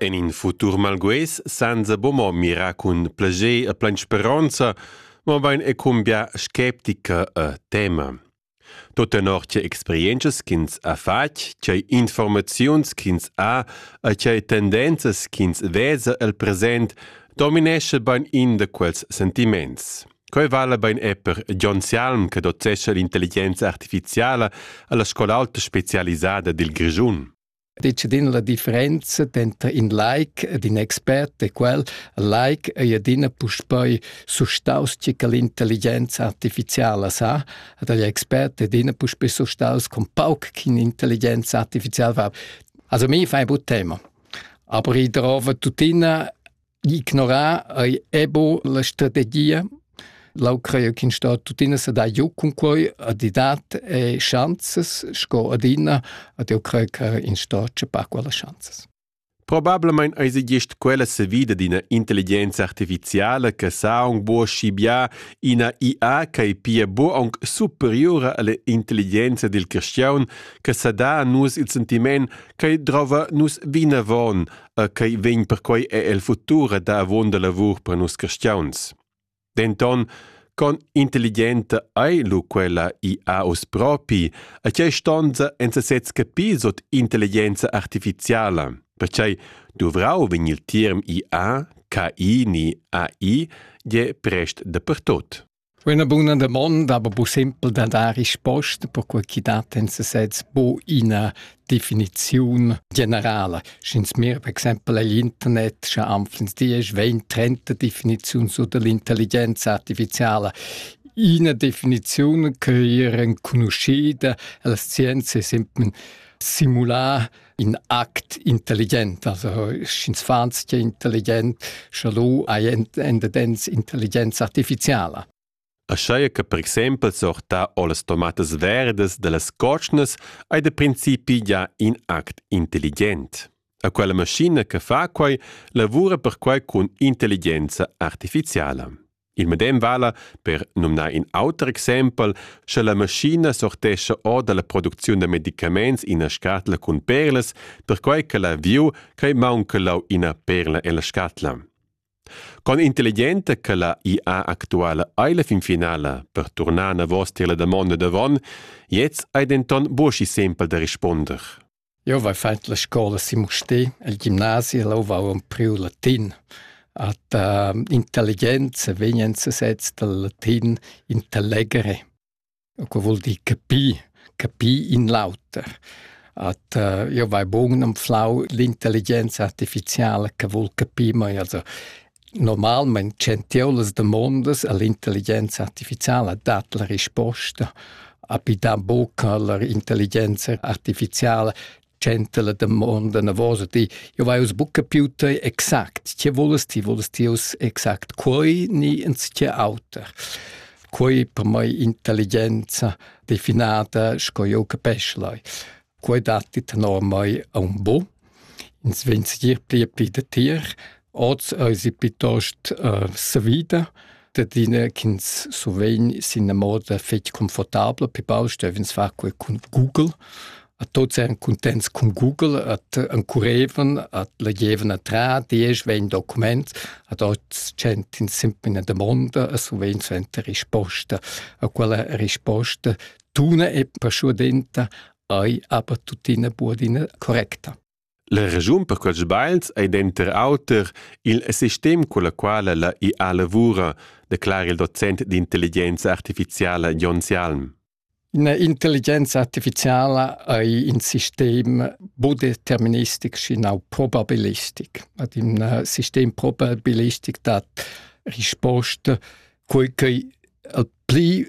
En in futur malgues senza bomo mira cun plager e plein speronza, mo vain e cumbia skeptica e tema. Tot tenor che experienzas ch'ins ha fatg, che informaziuns ch'ins ha e che tendenzas ch'ins vesa el present dominesce bain in da quels sentiments. Quei vala bein er per John Salm che docescha l'intelligenza artificiala alla scola alta specialisada dil Grischun. Decidind la differenza denter in like ed in expert e quel like ei adina puspei sustaus che l'intelligenza artificiala sa, ad agli expert adina puspei sustaus con pauc ch'intelligenza artificiala va. Also mi fa ein bu tema. Aber ich trove tuttina ignorar ei ebo la strategia Lau creio ch'in sta tuttina sa dà giu cun quei a didat e chanzas sco adina ad eu creio che in sta c'è pa quella chanzas. Probablamain eis gist quella savida d'ina intelligenza artificiala che sa aunc buca schibiar ina IA ch'ei pia buca aunc superiura alla intelligenza dil cristian che sa dà a nus il sentiment ch'ei drova nus vinavon e quei vegn perquei er el futur a dar avonda lavur per nus cristiauns. Denton, con intelligenta ei lu quella IA oz propi, a tgei stonza en sesez capir sot intelligenza artificiala? Perciei duvrau vegn il term IA, KI ni AI je prest dapertot. Üna buna damonda, aber bu simpel da dar risposta, perque chi dat in sesez bu iina definiziun generala. Sch'ins mir per exaimpel egl internet, scha anflens diesch, vegn trenta definiziuns sur dell'intelligenza artificiala, iina definiziun ch'ei er enconuschida, la scienza è semplem simular in act intelligent, also sch'ins fans che intelligent, sche lu hai endedens intelligenza artificiala. Aschia che per exempel sorta o las tomatas verdas dellas cotschnas ei da principi già in act intelligent. A quella maschina che fa quei lavura perquei cun intelligenza artificiala. Il medem vala per numnar in auter exempel, sche la maschina sortescha or da la producziun da medicaments ina scatla cun perlas, perquai che l'aviu crai maunca lau ina perla en la scatla. Con intelligenta che la IA actuala ei la fin finala per turnar navos tier la damonda davon, jetzt ei denton buca sempel da risponder. Jeu vai fatg la scola sin Mustér, el gimnasi, e leu vau empriu latin. At uh, intelligenza vegn enzatgets dal latin intellegere, che vul dir capir, capir in l'auter. At uh, jeu vai bun anflau l'intelligenza artificiala che vul capir, ma also Normalmein tschentieu las damondas all'intelligenza artificiala dat la risposta, api da buca la intelligenza artificiala tschenta la damonda navosa, di «Eu vai uss buca più te exact, tge vules ti? Vules ti uss exact quei ni enzatgé auter?» Quei per mei intelligenza definada sco jeu capesch lai. Quei datti tenor mei aunc bu. Ins vegn segir pli e pli datier. Oz eisi piuttost äh, savida, dadina ch'ins survegn sin una moda fetg confortabla per baustellen, ins fa quei cun Google. A tots eran contents cun Google, at encurevan, at legevan a tra, diesch, vegn document, ad oz centin sempre una domanda e survegn suenter risposta. A quella risposta tuna e paschuodenta ei aber tuttina buadina correcta. La regiun per quels bains ei denter auter il sistem con la quala la IA lavura, declara il docent d'intelligenza artificiala Jon Sialm. Intelligenza artificiala ei in sistem budeterministic schinau probabilistic. Ad in uh, sistem probabilistic dat risposta quei che al pli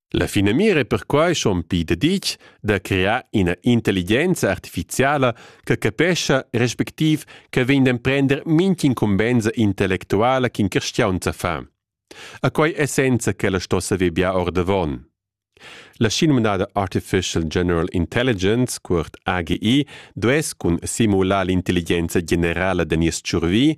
La finamira è perquai schon pli daditg da crear ina intelligenza artifiziala che capescha respectiv che vegn d'emprender mint'incumbensa intellectuala ch'in cristian sa fa. A quai essenza ch'ella sto saver bia ordavon. La schinumnada Artificial General Intelligence, cuort AGI, duess cun simular l'intelligenza generala da nies tschurvi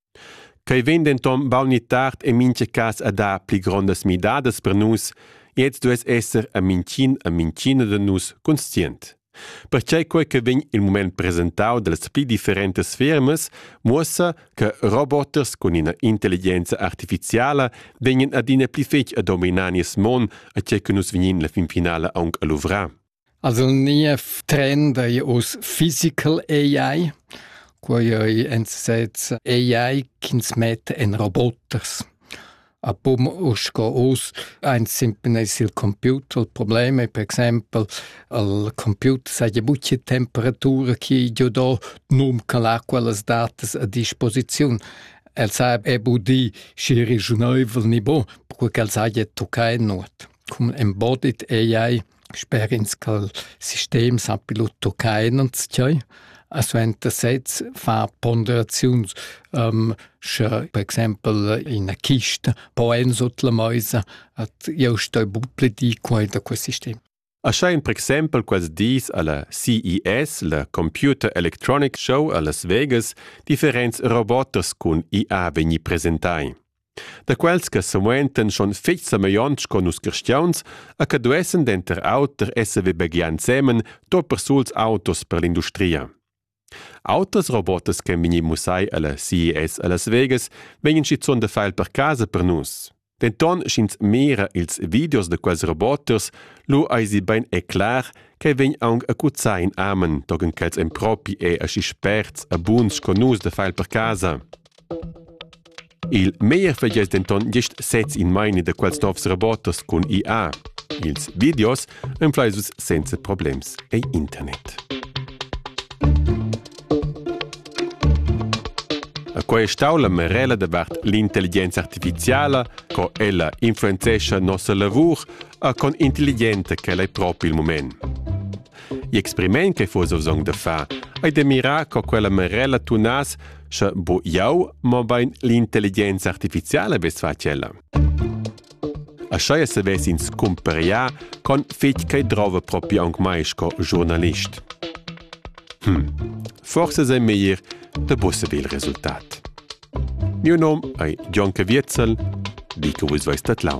Quei vegn denton baun ni tard en mintga cass a dar pli grondas midadas per nus e ins duess esser a mintgin a mintgina da nus conscient. Perquei quei che vegn il mument presentau dallas pli differentas fermas muossa che roboters cun ina intelligenza artificiala vegnan adina pli fetg a dominar nies mon, a tgei che nus vegnin la finfinala aunc a luvrar. Also il niev trend ei uss physical AI. Quei ei entsetz AI ch'ins metta en roboters. A pum uss sco uss eins simplesmente il computer. Il problem è per exempel, il computer sa ja buca temperatura chi giu do num che l'ha quellas datas a disposiziun. El sa è budì schi regiunaivel ni bon, perquei ch'el saja toccai nuot. Cum embodied AI Sper ins cha'l sistem sappi lur tuccar inanzchai, a suenter sez far ponderaziuns, sche per exaimpel ina chista po en sut la meisa, at jeu stoi buc pli dir quai da quel sistem. Aschain per exaimpel quels dis a la CES, la Computer Electronic Show a Las Vegas, differents robots cun IA vegni presentai. Da quels che semuentan schon fetg semeglionts con nus cristiauns e che duessen denter auter esser vebegliai ensemen to persuls autos per l'industria. Autras robotas che vegni mussai alla CES a Las Vegas vegnan schizun da file per casa per nus. Denton sch'ins mira ils videos de quels roboters, lu eisi bein e clar che vegn aunc acuzai in amen, togen quels en propi e aschi sperts e buns con nus de file per casa. Il meglier vegess denton gest sez in meini da quels novs robots cun IA. Ils videos enflai vus senza problems ei internet. Quei è stau la merela davart l'intelligenza artificiala, co ella influenzescha nossa lavur, a con intelligente che è propi il moment. Gli experiment che fuss song da far ei de mirar co quella merela tunas Sche bo jau, mobein l'intelligenza artificiala ves fa tschella. A scheia se ves ins cumperià con fitg che drova propi aunc mai sco giornalist. Hm, forse sei meglier de busse il resultat. Mio nom ei John Caviezel, dico vus vais dat lau.